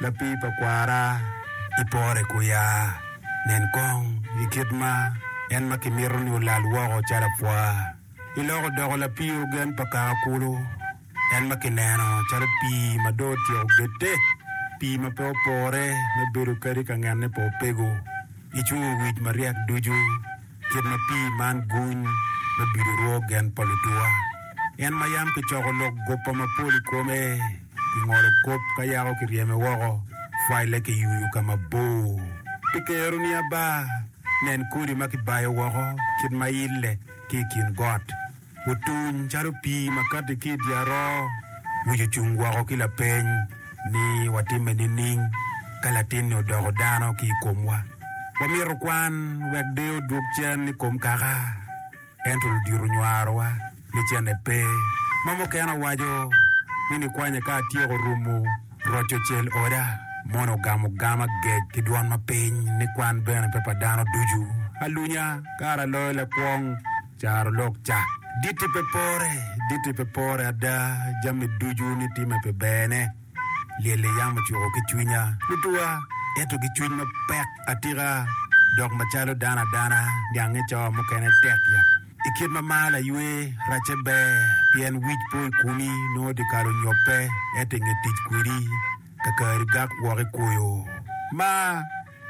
Lapii pa kwara, ipore ku ya. Nen kong i kit ma en ma kimito ni olal woko calo apwa, iloko odoko lapii ogen pa kaka kulu, en ma kineno calo pii ma dong otyeko gette, pii ma pe opore me bedo kadi ka ngenne pa opego. Icungo owic maryek ducu, kit ma pii man guny me bido rwo gen pa lutuwa, en ma yam kicoko lok guppa mapol i kome. ki ngolo kop ka yako kiryeme woko, file ki yuyu ka mabor pi kero ni aba. Nen kodi ma kibayo woko kit ma ile ki i kin got, otuny calo pii ma kati ki i dye aroo. Wic ocung woko ki lapeny ni, Watimme nining ka latin-ni odoko dano ki i komwa? Wamito kwan wek deyo odwog cen i kom kaka? Ento ludito onywarowa ni cente pe. Ma mukene owaco ni nikwanya ka atyeko rumo roco cel oda, moni ogamo gam agec ki dwon mapiny ni kwan bene pe pa dano ducu. Alunya kara aloyo lakwong caro lok cak. Ditti pe pore, ditti pe pore ada, jami ducu ni time pi berne. Lyel i yam ocuko ki cwinya tutwa, ento ki cwiny mapek atika dok macalo dano adana gange cawa mukene tek ya. I kit ma mar aywe, racce ber pien wic po i kumi nongo dyekal onyobbe ento i nge tic kwedi kakari gak woko i kwoyo. Ma.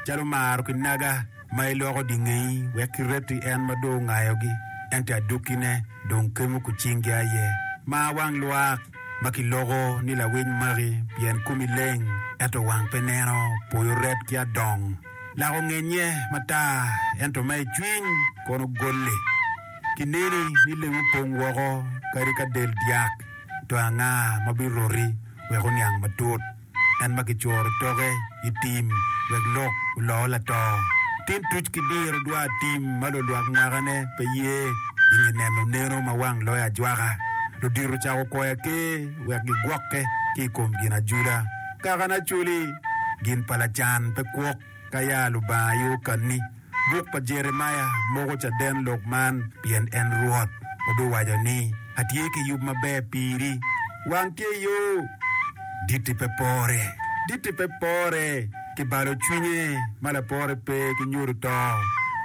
calo maro ki naga ma iloko dingeyi wek kiret i en ma dong ongayogi, ento adukkine dong kemo ku cingi aye. Mar wang lwak ma kiloko ni lawiny maki, pien komi leng, ento wang pe neno, poyo ret ki adong. Lak ongenye matar, ento ma i cwiny kono golle. Kineni ni leng opong woko kadi ka del dyak, to anga ma biroti wek oniang matut? en ma kicuro toke i tim wek lok oloo lato. Tin tuc ki diro dwa tim ma lulwak mwakane pe ye i nge neno neno ma wang loyo ajwaka. Ludito cako kwoyo aker wek gigwokke ki i kom ginajula. Kaka ni Acholi, gin pa lacan pe kwok. Ka ya Lubanga aye okanni, buk pa Jeremia moko caden lok man, pien en Rwot obiwaco ni, Atye ki yub maber piri, wang tye yo, ditti pe pore, ditti pe pore, ki balo cwinye ma lapore pe, ki nyodo to,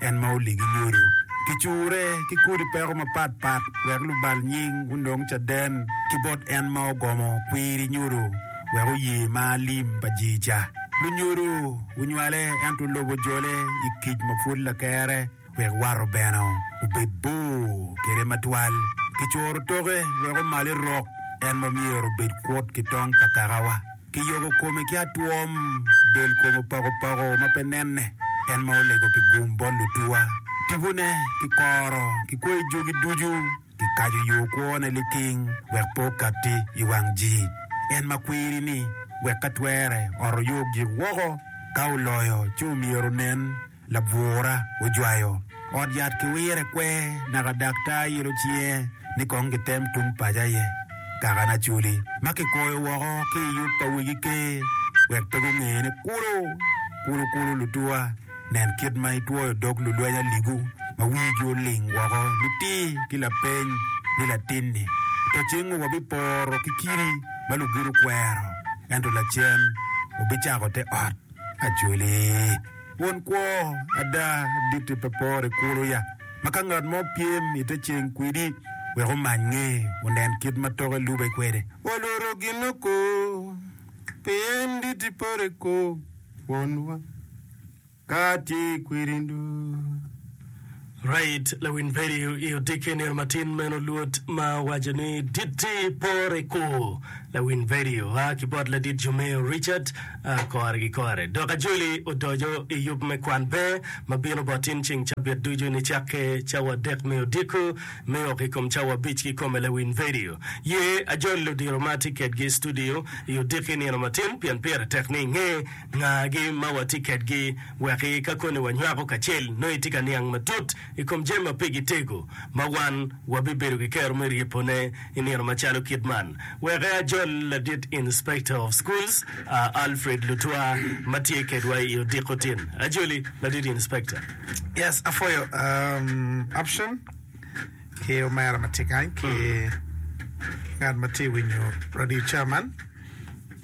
en ma oligi nyodo. Kicure ki kodi peko mapat pat, wek lubal nying onong caden ki bot en ma ogomo kwiri nyodo. wek oye mar lim pa jii ca. Lunyodo gunywale ento lobo jole i kic ma pwod lakere wek wato bene obed bor kede matwal. Kicuro toke wek omale rok en ma myero obed kwot ki tong pa kakawa. Kiyoko kome ki atwom, del kome opako pako ma pe nenne, en ma olego pi gum bot lutuwa. Tipone ki koro ki koi jogi ducu. Kikaco yo kwone liting wek pe okatti i wang ji. En ma kwiri-ni wek ka twere ot oyog jik woko. Ka oloyo ci omyero onen labwura ojwayo ot yat ki wire kwe naka dak ta ilo cinge ni kong gitem tung paco aye. Kaka Nacoli ma kikoyo woko ki i yub pa Wegi Ker wek pe gunge ni kulu kulu kulu lutuwa. Nen kit ma itwoyo dog lulweny aligu ma wigi oling woko nitir ki lapeny ni latinni, To cingngu wabiporo ki kidi ma lugido kwero, ento lacen wubicako te ot acholi. Won kwo ada aditi pe poro i kulu ya ma ka ngat mo pyem i te ceng kwidi wek omany nge onen kit ma toke lube kwede? Walworo gin oko, pien dit iporo i kor. kwonwa ka tye kwiri nduu. Right lawiny peri i odiki nino matin meno luot ma owaco ni ditti pore ko lawiny peri oa ki bot ladit Jumeo Richard a kore ki kore dok ajoli odoco i yub me kwan pe ma bino bot in ceng cabit ducu nicakke cawa adek me odiko Me ok i kom cawa abic kikome lawiny vedio ye ajol ludiro ma atye kedgi i studio i odiki nino matin pien pire tek ni inge nga gi ma watye kedgi wek i ka koni wanywako kacel nongo itye ka niang matut i kom jami ma pigi tego ma wan wabibedo ki kero me ryepo ne i nino macalo kit man weke ajol ladit inspector of schools Alfred Lutwa ma tye kedwa i odiko tin ajoli ladit inspector. Yes apwoyo option ki omera matye kany ki ngat matye winyo radio ca man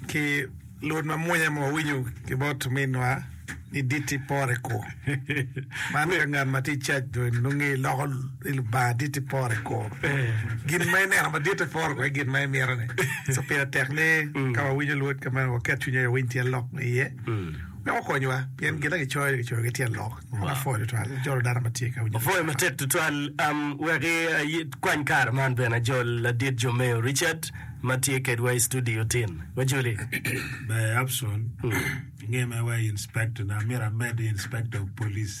ki lwod mamwonya ma wawinyo ki bot ominwa ni diti pore ko man ka ngat matye cac do nonge iloko ilubanga diti pore ko gin ma ineno madit i pore ko gin ma imito ni so pire tek ni ka wawinyo lwod ka meno waket cwinya wawiny tye lok ma iye Meno konyowa pien gin ma kicoyo kicoyo ki tyen lok mapol tutwal ma jolo dano ma tye ka winyo. Apwoyo matek tutwal. Um, wek ikwany kare man bene ajol ladit Jomeyo Richard ma tye kedwa i studio tin. Wajoli. Ber Abson, inge mere wa i inspector na, myero amed i inspector of police.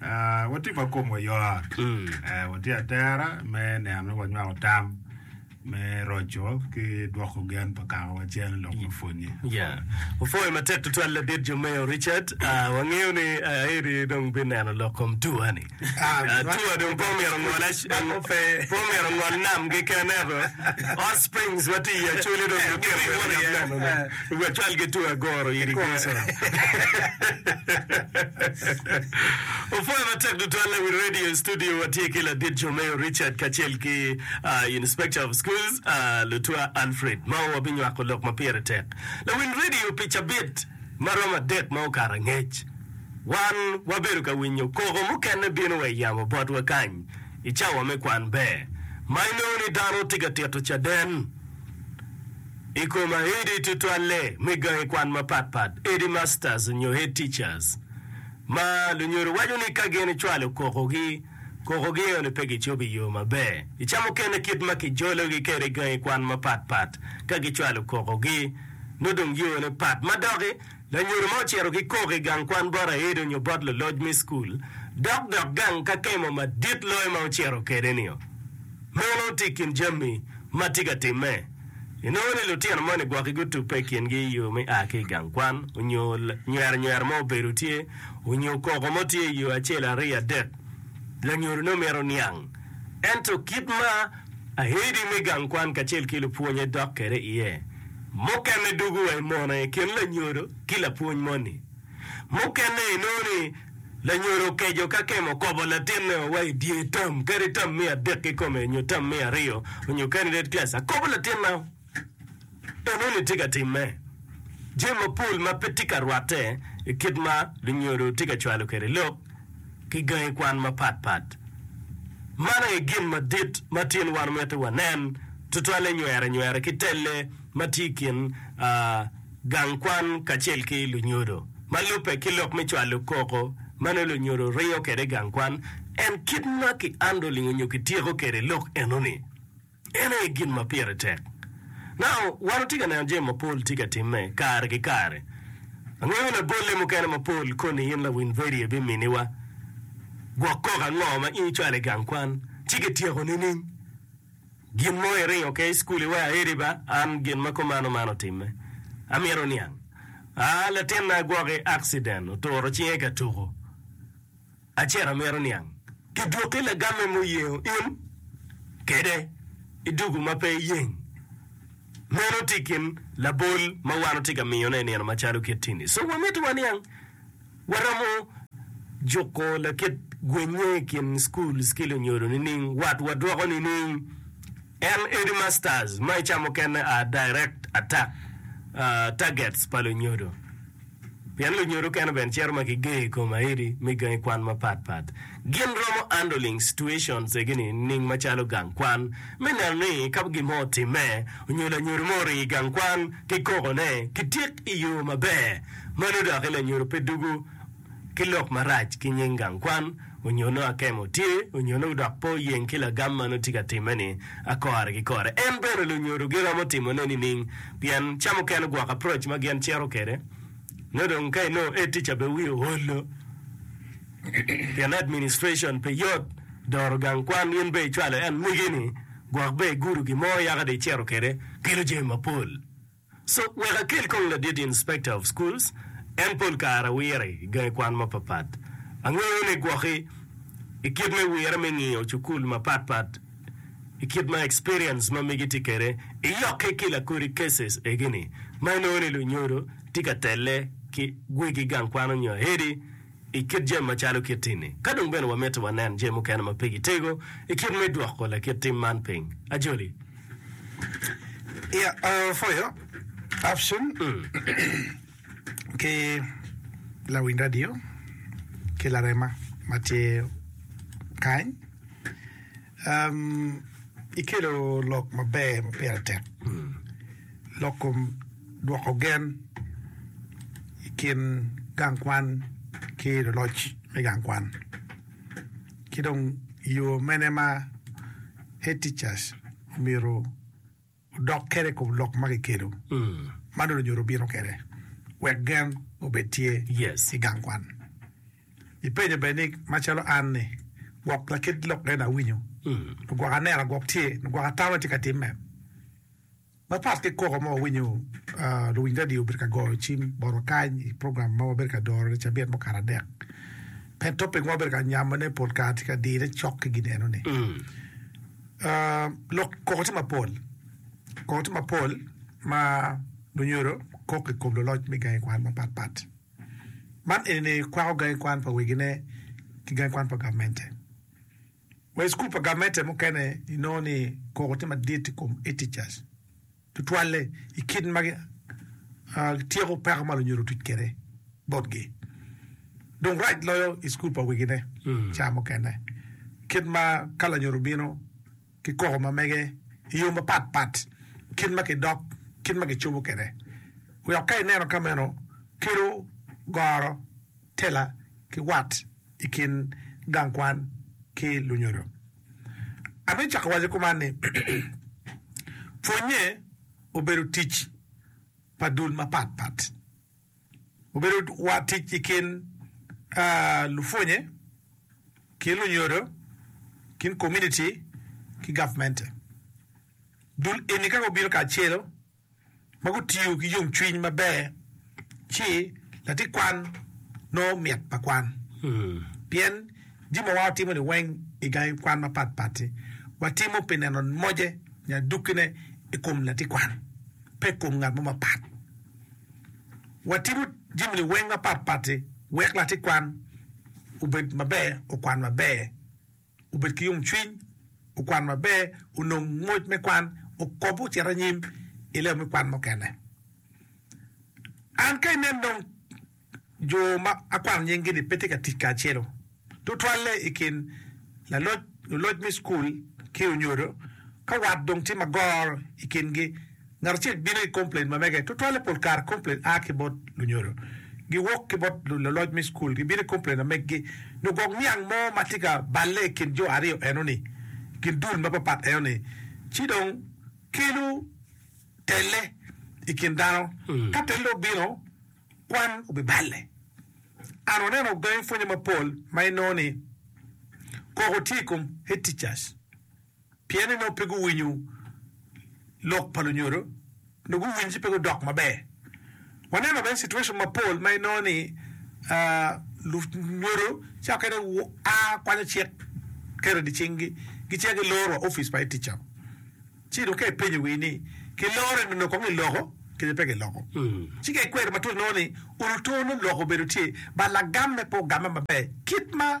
Ah, watye ma komwa yot. Eh, watye atera me neno ni wanywako tam me roco ki dwoko gen pa kaka wacen lok me pwonye. Ya. Opwoyo matek tutwal ladit Jomeo Richard. Ah, wangeyo ni ah, Aeri dong bineno lok kom tua ni. Ah, Ah, man- tua dong pe omyero ngol ac- Man ope. pe omyero ngol nam keken ento Hot Springs watye i Acholi dong lutino mito neno. Wek cwal ki two agoro iri Jesu. Opwoya matek tutwal i wi radio i studio watye ki ladit Jomeo Richard kacel ki Inspector of Schools Lutwa Alfred ma wabinywako lok ma pire tek lawil radio pi cabit ma romo adek ma okato angec. Wan wabedo ka winyo koko mukene bino wa i yamo botwa kany i cawa me kwan ber ma inongo ni dano tye ka tito caden. I kom ahedi tutwalle me gangi kwan mapatpat, headmasters nyo head teachers, ma lunyodo waco ni ka gin icwalo kokogi, kokogi eno-ni pe gicobo i yo maber. I ca mukene kit ma kijologi kwede gangi kwan mapatpat ka gicwalo kokogi, nongo dong yone pat. Ma doki, Lanyodo mo ocito ki koko i gang kwan bot aedo nyo bot luloc me cukul dok dok gang ka kemo madit loyo ma ocito kede nio. Meno ti i kin jammi ma ti ka timme. I nongo ni lutino moni gwoki gutubbe i kingi i yo me a ki i gang kwan onyo nywero nywero mo obedo tye onyo koko mo tye i yo acel ariyo adek, lanyodo ne mito niang. Ento kit ma. Ahedi me gang kwan kacel ki lupwonye dok kede iye. Mukene dugu wa i mono i kin lanyodo ki lapwony moni. Mukene i nongo ni lanyodo okeco ka kemo kobo latinne o wa i dyer tam kadi tam me adek kikome onyo tam me aryo onyo kanilet class akobo latinna o. Enoni tye ka timme jami mapol ma pe tye ka rwatte i kit ma lunyodo tye ka cwalo kwede lok ki gangi kwan mapat pat. Man aye gin madit ma tin wan omyero wanen, tutwalle nywere nywere ki telle ma tye i kin gang kwan kacel ki lunyodo. Ma lubbe ki lok me cwalo koko ma nongo lunyodo ringo kwede i gang kwan, en kit ma kiandoling onyo kityeko kwede lok enoni. En aye gin ma pire tek. Nano, wan watye ka neno jami mapol tye ka timme kare ki kare. Angeyo ni abolle mukene mapol koni in lawiny vedio biminiwa gwok koko ango ma in icwalo i gang kwan ci kityeko nining? Gin mo iringo ke i cukul iwe aedi ba? An gin ma kumano man otimme. Amito niang. A Latinna gwoki accident, oturo cinge ka tuko. Acera myero niang ki dwoki lagamme muyengo in kede i dugu ma pe iyeng. Meno tye kin labol ma wan watye ka miyone i nino macalo kit tini. So wamito waniang waromo juko lakit gwenye i kin schools ki lunyodo nining? Wat wadwoko nining? En headmasters ma i ca mukene are direct attack targets pa lunyodo. Pien lunyodo kene bene cito ma kigeyo i kom aedi me gangi kwan mapat pat. Gin romo handling situations egi nining macalo gang kwan me neno ni ka gin mo otimme onyo lanyodo mo oringo i gang kwan ki koko ne ki tik i yo maber. Mano doki lanyodo pe dugo ki lok marac ki nying gang kwan. onyo nongo akemo tye, onyo nongo dok pe oyeng ki lagam ma nongo tye ka timme ni akore ki kore. En bene lunyodo giromo timo ne nining? Pien ca mukene gwoko approach ma gin cito kede no dong ka inongo head teacher be wiye ohollo pien administration pe yot doro gang kwan in be icwalo en migi ni gwok be igudo gimo yaka dong icito kede kelo jami mapol. So, wek akel kong ladit Inspector of Schools, en pol kare wire i gangi kwan mapapat. Angeyo ni gwoki i kit me wire me ngiyo cukul mapat pat i kit ma experience ma megi tye kede i yokke ki lakodi cases egini ma inongo ni lunyodo tye ka telle ki gwegi gang kwan onyo ahedi, i kit jami macalo kit-ti-ni. Ka dong bene wamiti wanen jami mukene ma pigi tego i kit me dwoko lakit tim man piny, ajoli. Yeah, uh, for your option ki lawiny radio ki larema ma tye kany. Ikelo lok maber ma pire tek, loko dwoko gen i kin gang kwan ki luloc me gang kwan, ki dong yo mene ma Head Teachers omyero odok kede kom lok ma kikelo ma nongo onyo obino kede wek gen obed tye i gang kwan. I penyo bene ni ma calo an ni gwok lakit lok eni awinyo nyo gwok anena gwok tye nyo gwok atamo tye ka time. Ma pat ki koko ma wawinyo luwiny radio obedo ka goyo cim botwa kany i program ma wabedo ka doro ne cabit mukato adek pien topic ma wabedo ka nyamo ne pol kare tye ka dire cok ki gin eno ni. Lok koko tye mapol. Koko tye mapol ma lunyodo kok i kom luloc me gangi kwan mapatpat. Man eni kwako gangi kwan pa wegine ki gangi kwan pa gamente. Wa i cukul pa gamente mukene inongo ni koko tye madit i kom etichas. tutwalle i kit ma gityeko peko ma lunyodhi otuc kwede botgi. Dong rac loyo i cukul pa wegine ca mukene, kit ma ka lanyodo obino ki koko ma mege i yo mapat pat, kit ma kidok, kit ma kicobo kwede, wek ka ineno ka meno kelo goro, tela ki wat i kin gang kwan ki lunyodo. Abicako waco kuman ni, Pwonnye obedo tic pa dul mapat pat. Obedo wa tic i kin lupwonnye ki lunyodo, kin komuniti ki gavmente. Dul eni ka gubino kacelo, ma gutiyo ki yomcwiny maber ci latikwan nongo mit pa kwan. Pien jami ma watimo-ni weng i gangi kwan mapatpat-ti, watimo pi neno moje nyo adukkine i kom latikwan, pe i kom ngat mo mapat. Watimo jami-ni weng mapatpat-ti wek latikwan obed maber, okwan maber. wubed ki yomcwiny, wukwan maber, wunong ngwec me kwan, wukob, wucit anyim i lewa me kwan mukene. An ka inen dong jo ma akwano nying-gi-ni pe tye ka tic kacelu, tutwalle i kin laloc, luloc me cukul ki onyodo, ka wat dong tye magoro i kingi, Ngat acel bino i komplain ma mege. Tutwalle pol kare komplain a ki bot lunyodo giwok ki bot luloc me cukul. Gibino i komplain ma meggi nyo gok niang mo ma tye ka balle i kin jo aryo enoni, gin dul ma papat enoni, ci dong kelo telle i kin dano. Ka telle obino, kwan obiballe. An waneno gangi pwonye mapol ma inongo ni koko tye i kom head teachers Pien ni nongo pe guwinyo lok pa lunyodo, nongo guwinyo ci pe gudok maber. Waneno bene situation mapol ma inongo ni lunyodo cawa kene gua kwanyo cik keri di cinggi, gicito giloro wa opic pa etica. Ci dong ka ipenyo wii ni kiloro eni nongo kong iloko kede pe kiloko. Ci ka ikwero matut inongo ni oluto nongo lok obedo tye but lagam me pe ogame maber kit ma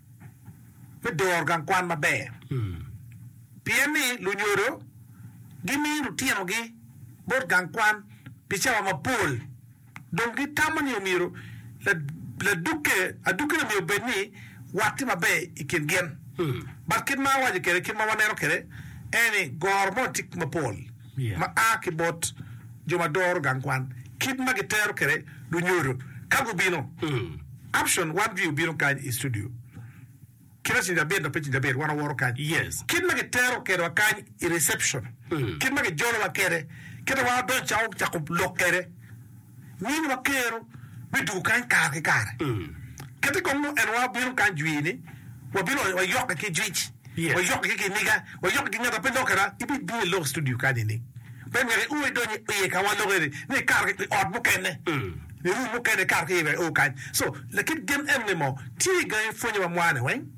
me doro gang kwan maber pien ni lunyodo gimiyo lutinogi bot gang kwan pi cawa mapol dong gitamo ni myero ladukke adukkine myero obed ni watti maber i kin gin. But kit ma awaco kwede kit ma waneno kwede en ni goro mo tye mapol. ma a ki bot jo ma doro gang kwan kit ma gitero kwede lunyodo ka gubino. Option one jwi obino kany i studio kite ceng cabit dok pe ceng cabit wan owoto kany. Kit ma gitero kwedwa kany i reception, kit ma gijolowa kwede, kit ma wan wadonyo cako cako lok kwede. Wan wakero me dwogo kany kare ki kare. Kadi kong nongo en wa bino kany jwiri-ni, wabino wayokke ki jwic, wayokke ki kiniga, wayokke ki ngat ma pe lokere. Ibibino i lok studio kany-ni, pe myero i o idony iye ka walokke-ni, ni ikato i ot mukene, i rum mukene ikato ki iye wek i o kany. So, lakit gen eno ni moo tye gangi pwonyowa mwane weng.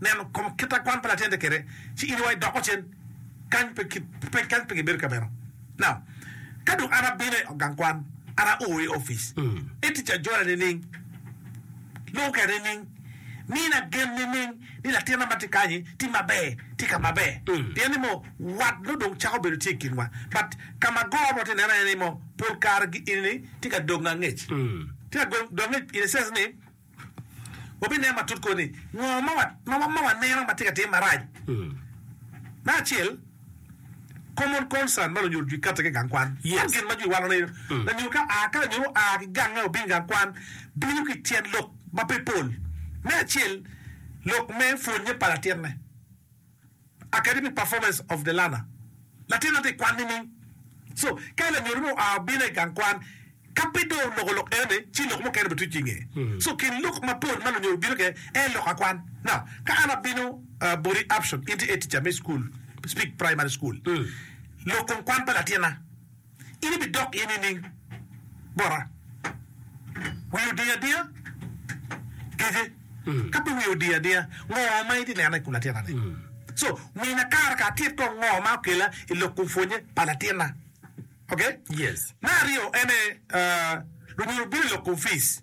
neno kom kit a kwan pa latin de kede ci in wa idoko cen kany pe kit pe kany pe gibedo kameno na ka dong an abino i gang kwan an a oo i office e tic ajola nining lubo kaya nining mi na gen nining ni latin na ma ti kanyi ti maber ti ka maber pien ni mo wat no dong cako bedo tye i kin wa but ka ma agoro mo ti neno aye ni mo pol kare gi ini ni ti ka dong angec ti ka dong angec in a sense ni wabinen matut kor ni ngo ma waneno ma tye ka tim marac. Me acel, common concern ma lunyodo jwi katte ki gang kwan. Man gin ma jwi wano ni lanyodo ka a ka lanyodo oa ki gange obin gang kwan bino ki tyen lok ma pe pol. Me acel, lok me pwonye pa latinne. Academic Performance of the Learner, Latin aye tye ka kwan nining? So, ka lanyodo mo oa obino i gang kwan, ka pe dong oloko lok eno-ni, ci lok mukene bituc ki i ngeye. So, kin lok mapol ma lunyodo bino kwede aye lok akwan. Now, ka an abino boti option, in tye head teacher me cukul, Speke Primary School, lok kong kwan pa latinna, in ibidok iye nining bota? Wiyi odiyo adiya kece? Ka pe wiyi odiyo adiya, ngo ma itye neno i kom latinna ni? So, mina kara ka atit kong ngo ma okela i lok kom pwonye pa latinna. Ok? Me aryo ene, lunyodo bino i lok kom fees.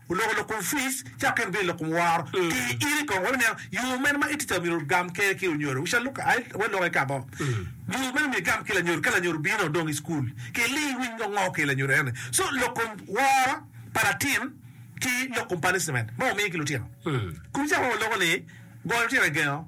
Oloko lok kom Fritz cako kene bino i lok kom woro. Ti iri kong wek ineno yo mene ma iti ca myero ogam kene ki onyodo. We ca Luka aye wek lok eka bo. Yo mene myero igam ki lanyodo ka lanyodo bino dong i cukul. Ki li iwiny ngo ngo ki lanyodo ene. So lok kom woro pa latin ki lok kom punishment ma wamiyo ki lutino. Kun caka ma waloko ni, goyo lutino i gengo.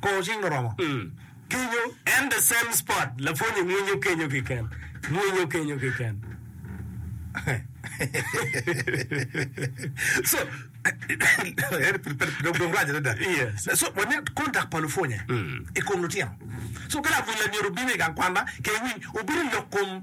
Kor cing oromo cwinyo en the same spot lapwony ni mwinyo kenyo kiken mwinyo kenyo kiken so dong rac adada yes so wane kontak pa lupwonye i kom lutino so ka lamwony lamyero obin i gang kwanna ke winy obino lok kom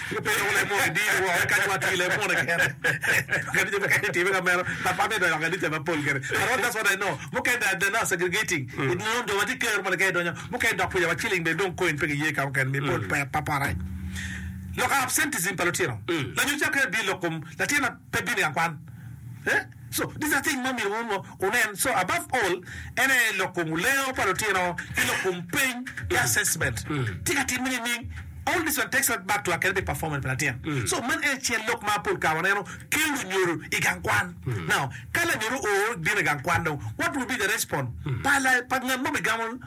Lupiny doko Lemon i dini woko eka nyo atir Lemon kene kadi jo mukene time ka meno but pat me donyo ka kanisa ma pol kene but what does what I know mukene they are not segregating it mean jo ma tye ker moni ka i donyo mukene dok pwonyo wa ciling bene dong coin pe ki ye ka mukene mi pol pe pa pore loko absenteism pa lutino lanyo cakere bino lok kom latin pe bino i akwan eh So these are thing ma myero wun wa wunen so above all en aye lok kom lengo pa lutino ki lok kom peny ki assessment tye ka timme nining all these one takes us back to academic performance pa latin so man en aye acel lok ma pol kare waneno kelo lunyodo I gang kwan now ka lanyodo oo bino I gang kwan dong what will be the respond pa la pa ngat ma obigamo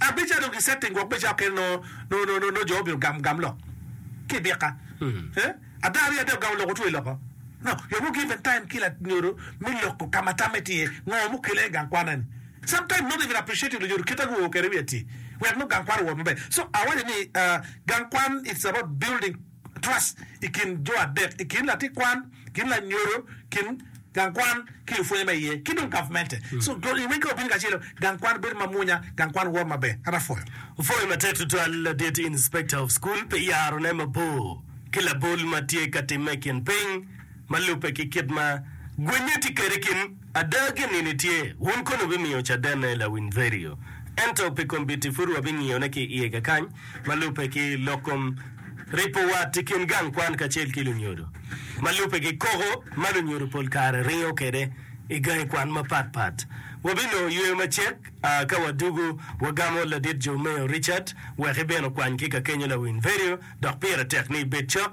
Abe ca dong kisetting gwok me cakke nongo jo obino gam gam lok ki i bikka? Ada aryo adek ogamo loko otweyo loko. Yom o given time ki lanyodo me loko ka ma tamme tye iye ngo mukele i gang kwana ni. Sometime not even appreciative lanyodo kit ma guo kwede wiye atir wek nongo gang kwan owot maber. So awaco ni gang kwan it's about building. Twas i kin jo adek, i kin latit kwan, kin lanyodo, kin gang kwan ki lupwonye ma iye, ki dong gavmente. So, dong i weggi wabino kacelo, gang kwan bedo mamwonya, gang kwan woro maber. An apwoyo. Apwoyo matek tutwal ladit Inspector of School pi yarone mabor ki labol ma tye ka timme i kin piny ma lubbe ki kit ma gwenye tye kwede i kin Ada, ginini tye, wun kono wubimiyo cadenne lawinverio, ento pi kombit-ti pud wabingiyone ki i iye kakany, ma lubbe ki lok kom ripo wat i kin gang kwan kacel ki lunyodo, ma lubbe ki koko ma lunyodo pol kare ringo kwede i gangi kwan mapatpat. Wabinongo yweyo macek a ka wadwogo, wagamo Ladit Jomeyo Richard wek ibin okwany ki ka kenyo lawinverio, dok pire tek ni ibed cok.